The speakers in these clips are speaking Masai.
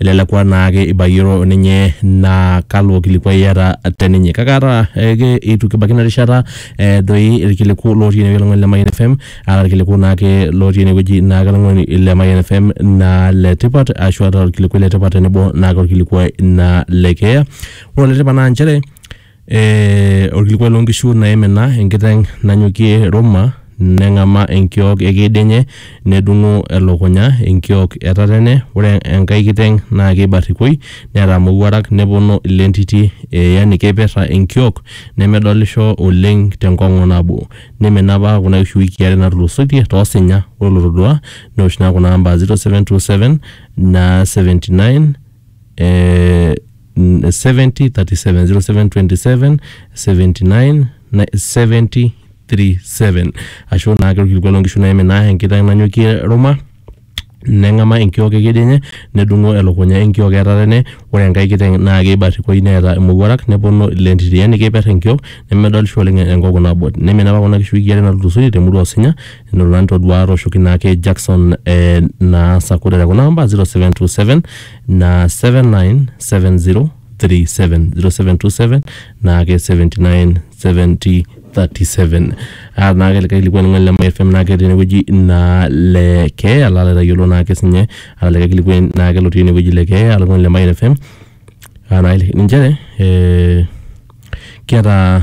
elelek aa naake ibayioro ninye naa kalo kilikuai iyata te ninye. Kake ata ake eitu kibaiki ina rishata eh, doi irkiliku lotii ene wueji oltung'ani le Mayian FM aa irkiliku naake lotii ene wueji naake oltung'ani le Mayian FM naa le tipat ashu ata orkilikuai le tipat tenebo naake orkilikuai naa le keeya. Ore ole tipat naa inchere Ee orkilikuai loo nkishu naimina enkiteng' nanyokie Ruma neng'amaa enkiok e keed enye nedung'u elukunya enkiok e tatene, ore enkae kiteng' naa keibarrikoi neeta imowuarak neponu ilentiti ee yani keipirra enkiok nemedolisho oleng' te nkong'u nabo. Neimina apa kuna kishu iwikii are natulusoitie too sinya, ore olotoduaa neosh naa kuna amba zero, seven, two, seven, naa seventy, nine, ee... mm, 70 37 0727 79 na- 70 37 ashu naa ake orkilikuai loonkishu naime naa enkiteng nanyokie ruma neng'ama enkiok ekedi enye nedung'o elukunya enkiok eetata ene ore enkae kiteng naa keibarrikoi neeta imowuarak neponu ilentiti yani keiper enkiok nemedolisho oleng enkongu nabo neimina apa kuna kishu wiki are natulusoitie temurua osinya enoto nanu toduaa atooshoki naake Jackson eh, naa sakudere kuna amba 0727 na 7970370727 naake 797037 Ah, naake likae kilikuani ng'ole le Mayian FM naake tenewueji naa le kee ala laitayiolo naake sinye ala likae kilikuani naake lotii enewueji le kee ala ng'ole le Mayian FM Ah, naake ninche eh, kiata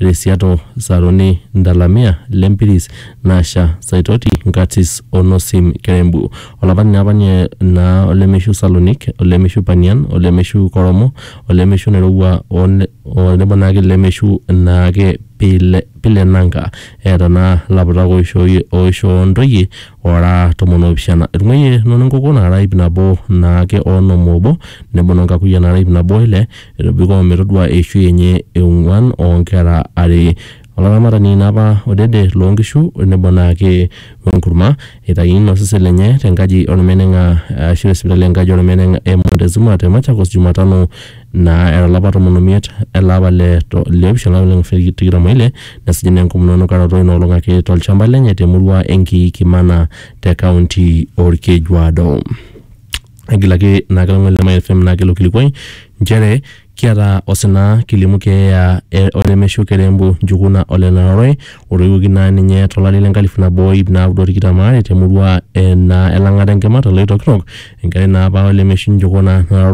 Resiato Saroni Ndalamia le Mpiris Nasha Saitoti Nkatis o Nosim Kerembu. Olapani naa apa ninye naa olemeishu Salonik, olemeishu Panian, olemeishu Koromo, olemeishu Nairowua o ne- o nebo naake lemeishu naake Pile, Pile Nanka. Eeta naa laputak oishooyie oishoo ntoyie oora tomon oopishana. Etung'uayie noo nenkoko naara ip nabo naake o onom oobo, nebo noo nkakuyiaa naara ip nabo o ile, Etobiko metodua eishoi enye e ong'uan oo nkera are. Olaramatani ina apa odede loo nkishu nebo naake we nkurma. Eitayuni ilo sesen lenye te nkaji o lmeneng'a ashu te sipitali e nkaji o lmeneng'a e Montezuma te Machakos Jumatano naa era lapa tomon o miet ele apa le le opishana o lapa le tikitam o ile nesuju naa enkomono enukaroto ina olong ake to lchamba lenye te murua e Nkiikimana te kaunti o Olkejuado. egilaki naa kelang'wani le Mayan FM naa kelo kilikuai nchere kiata osina kilimu keeya e- olemeshu kerembo njukuna ole Naroroi otoiwuoki naa ninye tolari le nkalifu nabo o iip naaudo o tikitam aare temurua e naa elang'ata enkima te Loitokitok enkerai naa apa ole meshu njukuna Naroroi